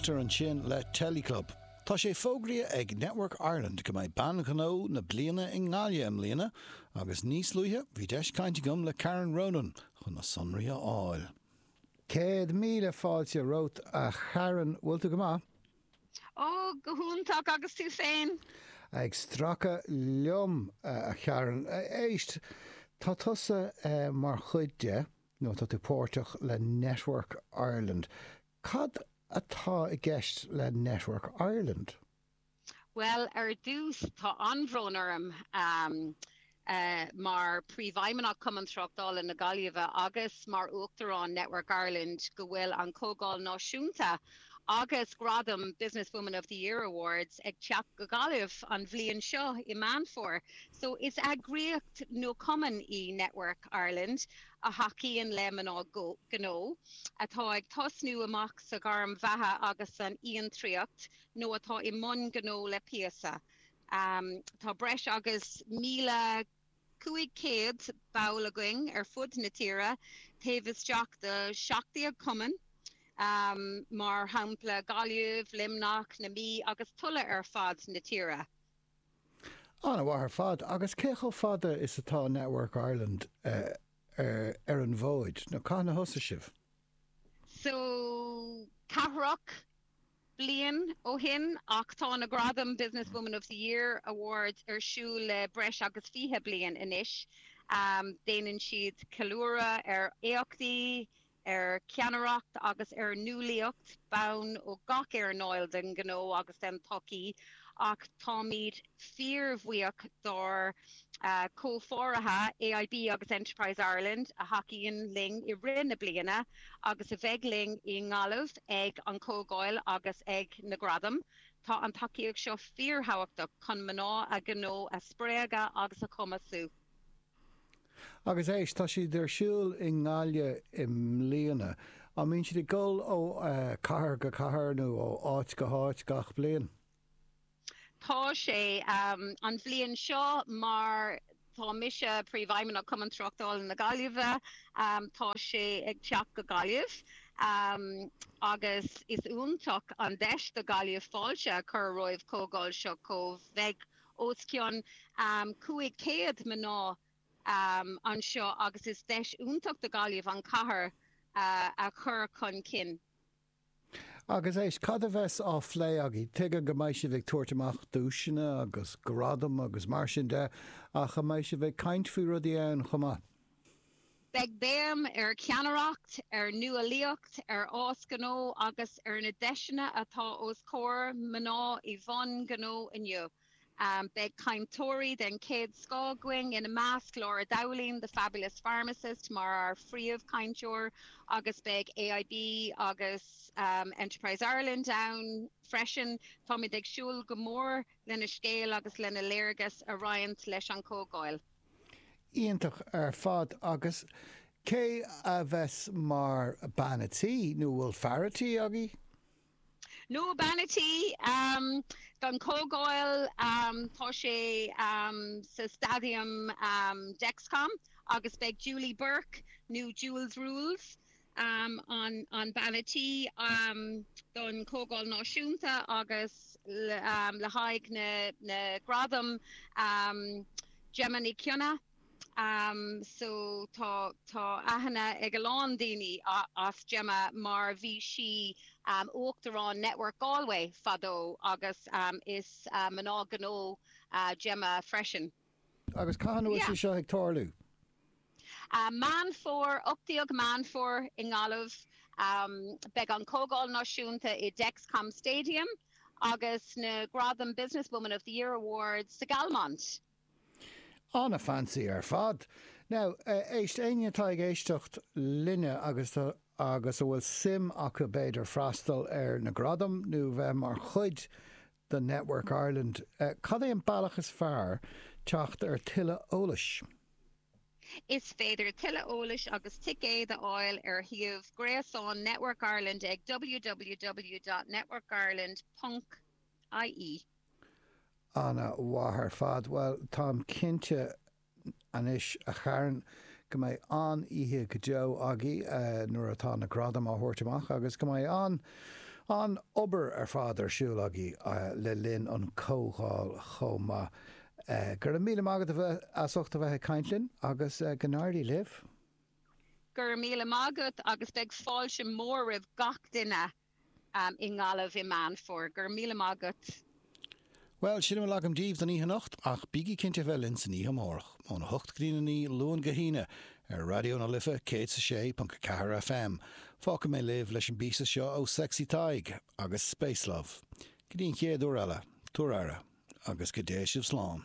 Fáilte ar ais chuig an Teleclub. Tá sé fógraithe ag Network Ireland go mbeidh Bean Ghnó na Bliana i nGaillimh i mbliana agus níos luaithe bhí deis caint agam le Karen Ronan chun na sonraí a fháil. Céad míle fáilte romhat a Karen, bhfuil tú go maith? Ó, go hiontach agus tú féin? Ag stracadh liom a Karen. Éist, tá tusa mar chuid de. nó tá tú páirteach le Network Ireland. Cad atá i gceist le Network Ireland? Bhuel, ar dtús, tá an-bhród orm, mar Príomhfheidhmeannach Cumann Tráchtála na Gaillimhe agus mar Uachtarán Network Ireland, go bhfuil an Chomhdháil Náisiúnta Agus gradam Business Woman of the Year Awards ag teacht go Gaillimh an bhliain seo i Meán Fómhair, so is eagraíocht nó cumann í Network Ireland a thacaíonn le mná gnó atá ag tosnú amach sa ghairm bheatha agus san fhiontraíocht nó atá i mbun gnó le píosa. Tá breis agus 1,000. 500 ball againn ar fud na tíre, taobh isteach de 17 cumann, mar shampla Gaillimh, Luimneach, na Mí agus tuilleadh ar fad na tíre. An-mhaith ar fad. Agus cé chomh fada is atá Network Ireland ar an bhfóid, nó cathain a thosaigh sibh? So, ceathracha bliain ó shin ach tá na gradaim Business Woman of the Year Awards ar siúl le breis agus 20 bliain anois. Déanann siad ceiliúradh ar éachtaí, ar cheannaireacht agus ar nuálaíocht ban ó gach earnáil den ghnó agus den tsochaí ach táimid fíorbhuíoch dár gcomhpháirithe AIB agus Enterprise Ireland a thacaíonn linn i rith na bliana agus a bheidh linn i nGaillimh ag an Chomhdháil agus ag na Gradaim. Tá an tacaíocht seo fíorthábhachtach chun mná i ngnó a spreagadh agus a chumasú. Agus éist, tá siad ar siúl i nGaillimh i mbliana. An mbíonn siad ag dul ó cathair go cathair nó ó áit go háit gach bliain? Tá sé an bhliain seo mar tá mise Príomhfheidhmeannach Chumann Tráchtála na Gaillimhe. Tá sé ag teacht go Gaillimh agus is iontach an deis do Ghaillimh fáilte a chur roimh chomhdháil seo comh bheidh os cionn 500 mná anseo agus is deis iontach do Ghaillimh an chathair a chur chun cinn. Agus éist, cad a bheas á phlé agaibh? Tuige go mbeidh sibh ag tabhairt amach duaiseanna agus gradaim agus mar sin de, ach an mbeidh sibh ag caint faoi rudaí ann chomh maith? Beidh béim ar cheannaireacht, ar nuálaíocht, ar fhás gnó agus ar na deiseanna atá os comhair mná i mbun gnó inniu. Beidh cainteoirí den chéad scoth againn, ina measc, Laura Dowling, The Fabulous Pharmacist, mar ár phríomhchainteoir, agus beidh AIB agus Enterprise Ireland ann freisin. Táimid ag súil go mór lena scéal agus lena léargas a roinnt leis an chomhdháil. Iontach ar fad. Agus cé a bheas mar bean a' tí, nó bhfuil fear a' tí agaibh? No bean a' tí don Chomhdháil Tá sé sa Staidiam Dexcom agus beidh Julie Burke nó Jules Rules an bean a' tí don Chomhdháil Náisiúnta agus le haghaidh na Gradaim Gemma Nic Cionnaith, so tá tá aithne ag a lán daoine ar Gemma mar bhí sí Uachtarán Network Galway fadó agus is mná gnó Gemma freisin. Agus cathain atá sé seo ag tarlú? Meán Fómhair, 18 Meán Fómhair i nGaillimh. Beidh an Comhdháil Náisiúnta i Dexcom Stadium agus na gradaim Business Woman of the Year Award sa Galmont. An-fancy ar fad. Now, éist, éinne atá ag éisteacht linne agus a bhfuil suim acu b'fhéidir freastal ar na gradaim nó bheith mar chuid de Network Ireland, cad é an bealach is fearr teacht ar tuilleadh eolais? Is féidir tuilleadh eolais agus ticéid a fháil ar shuíomh gréasáin Network Ireland ag www.networkireland.ie. Ana mhaith ar fad. Bhuel, táim cinnte anois a Kharen go mbeidh an-oíche go deo agaidh nuair atá na gradaim á thabhairt amach agus go mbeidh an-obair ar fad ar siúl agaibh le linn an comhdháil chomh maith. Go raibh míle maith agat as ucht a bheith ag caint linn agus go n-éirí libh. Go raibh míle maith agat agus beidh fáilte mór roimh gach duine. i nGaillimh i Meán Fómhair. Go raibh míle maith agat! Bhuel, sin a bhfuil agam daoibh don oíche anocht, ach bígí cinnte a bheith linn san oíche amárach, óna hocht go dtí'n a naoi, Luan go hAoine, ar Raidió na Life 106.4 FM. Fágfaidh mé libh leis an bpíosa seo ó Sexy Tadhg agus Spacelove. Go dtí an chéad uair eile, tabhair aire, agus go dté sibh slán.